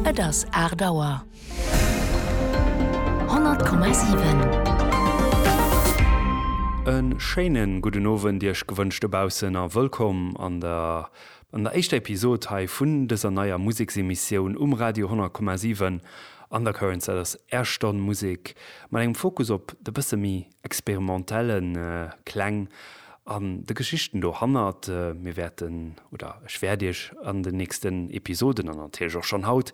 Et ass aacht Auer. 100,7. E schéine gudden Owend Iech gewënscht dobaussen a wëllkomm an der an der éischter Episod hei vun dëser neier Museksemissioun um Radio 100,7 Undercurrents. Dat ass Är Stonn Musek mat engem Fokus op de bësse méi experimentellen Kläng an de Geschichten dohannert. Mir wäerten, oder ech wäert Iech an den nächsten Episoden, an natierlech och schonn haut,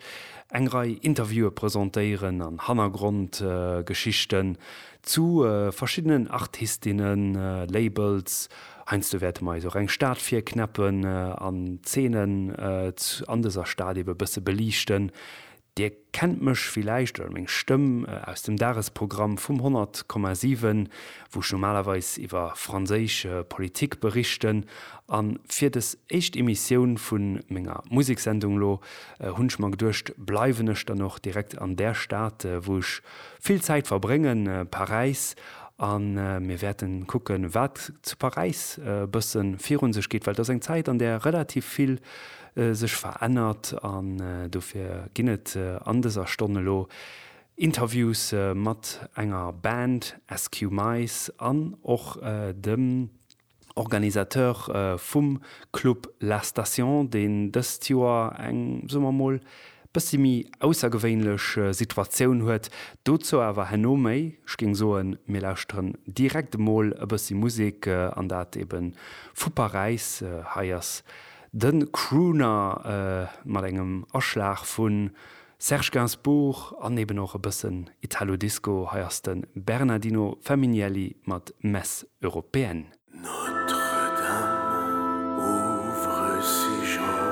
eng Rei Interviewe presentéieren an Hannergrondgeschichten zu verschiddenen Artistinnen, Labels. Heiansdo wäerte mer eis och eng Stad virknäppen an Zeenen an dëser Stad eebe bësse beliichten, Dir kennt mech villäicht oder meng Stëmm aus dem Dagesprogramm vum 100,7, wou ech normalerweis iwwer franséisch Politik berichten. A fir des éischt Emissioun vu menger Museksendung elo hunn ech mer geduecht, bleiwen ech dann och direkt an där Stad, wou ech vill Zäit verbréngen, Paräis. A mir wäerten kucken, wat zu Paräis e bësse virun sech geet, well et ass eng Zäit, an där relativ vill sech verännert an dofir ginn et an dëser Stonn elo Interviews mat enger Band, SQ Mice, an och dem Organisateur vum Club La Station, deen dëst Joer eng, soe mer mol, bëssi méi aussergewéinlech Situatioun huet. Dozou awer herno méi. Ech géing soen, mir lauschteren direkt emol e bëssi Musek, an dat ebe vu Paräis. Hei ass De Crooner mat engem Aschlag vu Serge Gainsbourg an eben och e bëssen Italo Disco, hei ass de Bernardino Feminielli mat Messe Européenne. Notre-Dame ouvre ses jambes.